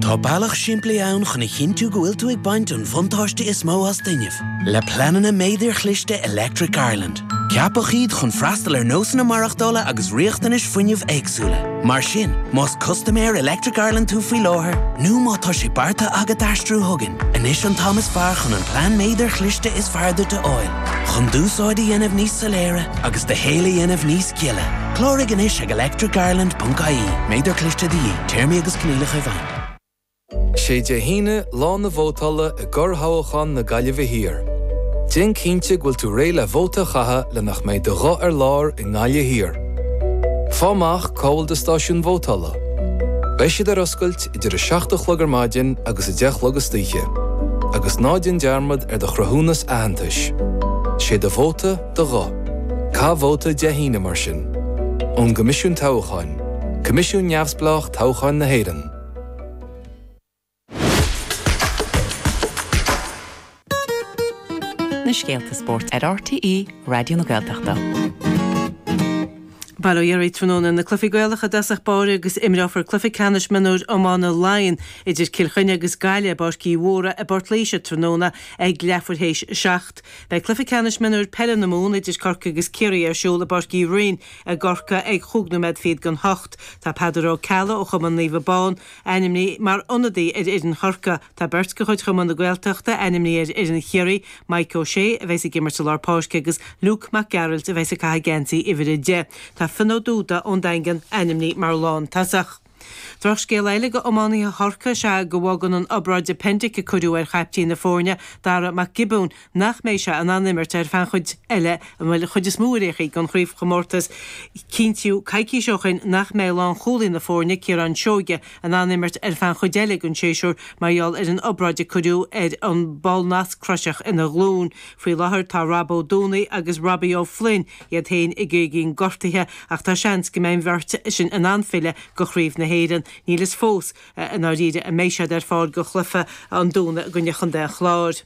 Tá bealach simplí ann chun a chinntiú go bhfuil tú ag baint an bhuntáiste is mó as d'fhuinneamh, le pleananna méadair chliste Electric Ireland. Ceapadh iad chun freastal ar nósanna maireachtála agus riachtanais fuinnimh éagsúla. Mar sin, más custaiméir Electric Ireland tú faoi láthair nó má tá sé beartaithe agat aistriú chugainn, anois an t-am is fearr chun an plean méadair chliste is fearr duit a fháil. Chun d'úsáid a dhéanamh níos soiléire agus do shaol a dhéanamh níos Gile. Cláraigh anois ag electricireland.ie. Méadar cliste de dhíth, téarmaí agus coinníollacha i bhfeidhm. Sé Dé hAoine lá na vótála i gcorrthoghachán na Gaillimhe Thiar. Déan cinnte go bhfuil tú réidh le vóta a chaitheamh le nach mbeidh do ghuth ar lár i nGaillimh Thiar. Faigh amach cá bhfuil do stáisiún vótála. Beidh siad ar oscailt idir a 7 a chlog ar maidin agus a 10 a chlog istoíche. Agus ná déan dearmad ar do chruthúnas aitheantais. Sé do vóta. do ghuth caith vóta Dé hAoine mar sin, ón gCoimisiún Toghcháin, coimisiún neamhspleách toghcháin na hÉireann. na scéalta spóirt ar RTÉ Raidió na Gaeltachta. Bail ó Dhia oraibh tráthnóna na cluichí Gaelacha i dtosach báire agus imreofar cluiche ceannais mionúir iomána Laighean idir Cill Chainnigh agus Gaillimh i bPáirc Uí Mhórdha i bPort Laoise tráthnóna ag leathuair théis a seacht. Beidh Cluiche Ceannais Mionúir Peile na Mumhan idir Corcaigh agus Ciarraí ar siúl i bPáirc Uí Rinn i gCorcaigh ag chúig nóiméad fichead chun a hocht. Tá Peadar Ó Ceallaigh ó chumann Naomh Abán ainmnithe mar ionadaí ar fhoireann Chorcaí. Tá beirt de chuid Chumann na Gaeltachta ainmnithe ar fhoireann Chiarraí, Mike O Sé a bheidhs ag imirt i lár páirce agus Luke Mac Gearailt a bheidhs ag caitheamh geansaí uimhir a deich. Tá Finn Ó Dúda ón Daingean ainmnithe mar lántosach. Drochscéal eile go iománaithe Chorcaí is ea go bhfágann an obráid appendix a cuireadh ar chaiptín na foirne, Darragh Mac Giobúin, nach mbeidh sé in ann imirt ar feadh an chuid eile, bhuel an chuid is mó ar aon chaoi den chraobhchomórtas cinntíodh coicís ó shoin nach mbeadh lánchúlaí na foirne, Ciarán Seoige, in ann imirt ar feadh an chuid eile den séasúr mar gheall ar an obráid a cuireadh ar an ballnasc croiseach ina ghlúin. Faoi láthair tá Rob Ó Dúnaigh agus Robbie Ó Floinn, iad féin ag éagaoin gortaithe, ach tá seans go mbeidh an bheirt sin in ann filleadh go Craobh na hÉireann. Níl fhios fós i ndáiríre an mbeidh siad ar fáil go cluiche an Domhnaigh i gcoinne Chontae an Chláir.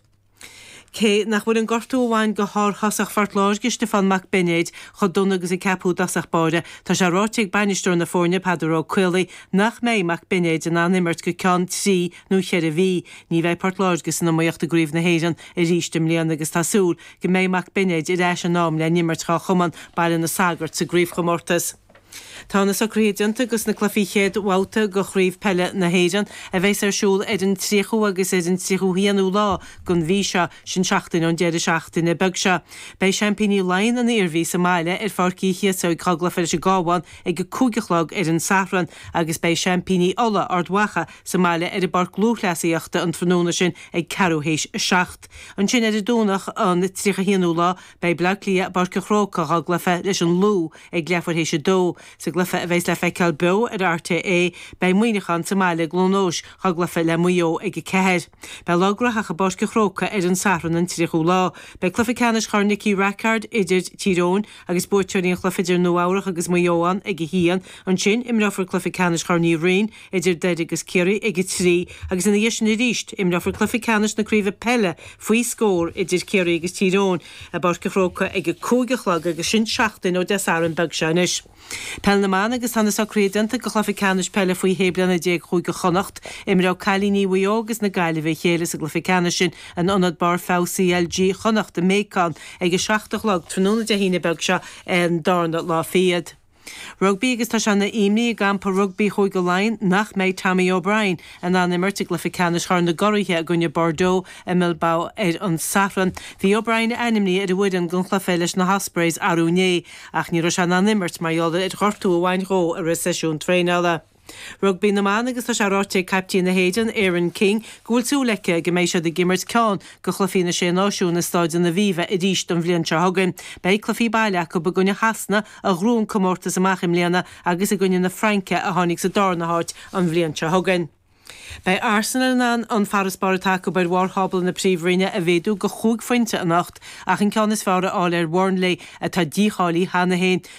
Cé nach bhfuil an gortú a bhain go shárthosach Phort Láirge, Stiofán Mac Beinéid, chomh dona agus a ceaptaí i dtosach báire, tá sé ráite ag bainisteoir na foirne, Peadar Ó Caollaí, nach mbeidh Mac Beinéid in ann imirt go ceann trí nó cheithre mhí. Ní bheidh Port Láirge san iomaíocht i gCraobh na hÉireann arís i mbliana agus tá súil go mbeidh Mac Beinéid ar ais in am le n-imirt dhá chumann Baile na Sagart sa gcraobhchomórtas. Tá na socruithe déanta do na cluichí chéad bhabhta de Chraobh Peile na hÉireann, a bheas ar siúl ar an 30ú agus ar an 31ú lá den mhí seo, sin seachtain ón deireadh seachtaine beag seo. Beidh seaimpíní Laighean, an Iarmhí, sa mbaile ar Pháirc Uí Chíosóig dhá gcluiche leis an gCabhán ag a cúig a chlog ar an Sathran agus beidh seaimpíní Uladh, Ard Mhacha, sa mbaile ar an bpáirc lúthchleasaíochta an tráthnóna sin ag ceathrú théis a seacht. Ansin ar an Domhnach an 31 ú lá beidh Bleá Cliath i bPáirc an Chrócaigh dhá gcluiche leis an Lú ag leathuair théis a dó. Sa gcluiche a bheas le feiceáil beo ar RTÉ beidh Muineachán sa mbaile i gCluain Eois dhá gcluiche le Maigh Eo ag a ceathair. Beidh lá graitheach i bPáirc an Chrócaigh ar an Satharn an 30 ú lá. Beidh cluiche ceannais Chorn Nicky Rackard idir Tír Eoghain agus buaiteoirí an chluiche idir Nua Eabhrach agus Maigh Eo ann ag a haon. Ansin imreofar cluiche ceannais Chorn Uí Rinn. idir Doire agus Ciarraí ag a trí agus ina dhiaidh sin arís. Imreofar cluiche ceannais na craoibhe peile faoi scór idir Ciarraí agus Tír Eoghain i bPáirc an Chrócaigh ag a cúig a chlog agus sin seachtain ó Dé Sathairn beag seo anois. Peil na mBan agus tá na socruithe déanta do chluiche ceannais peile faoi shé bliana déag Chúige Chonnacht. Imreoidh cailíní Mhaigh Eo agus na Gaillimhe a chéile sa gcluiche ceannais sin in Ionad Barr Feabha CLG Chonnacht i mBéacán ag a seacht a chlog tráthnóna Dé hAoine beag seo, an darna lá fichead. Rugbaí agus tá sé ina imní i gcampa rugbaí Chúige Laighean nach mbeidh Tommy O'Brien in ann imirt i gcluiche ceannais Chorn na gCuradh i gcoinne Bordeaux i mBilbao ar an Satharn. Bhí O'Brien ainmnithe ar an bhfoireann don chluiche leis na hOspreys arú inné ach ní raibh sé in ann imirt mar gheall ar ghortú a bhain dhó i rith seisiún traenála. Rugbaí na mBan agus tá sé ráite ag caiptín na hÉireann, Erin King, go bhfuil súil aici go mbeidh siad ag imirt ceann de chluichí na Sé Náisiún i Stáid an Aviva arís an bhliain seo chugainn. Beidh cluichí baile acu i gcoinne Shasana a ghnóthaigh an comórtas amach i mbliana agus i gcoinne na Fraince a tháinig sa darna háit an bhliain seo chugainn. Beidh Arsenal in ann an farasbarr atá acu ar bharr thábla na Príomhroinne a mhéadú go chúig phointe anocht ach an ceann is fearr a fháil ar Bhurnley atá dícháilithe cheana féin.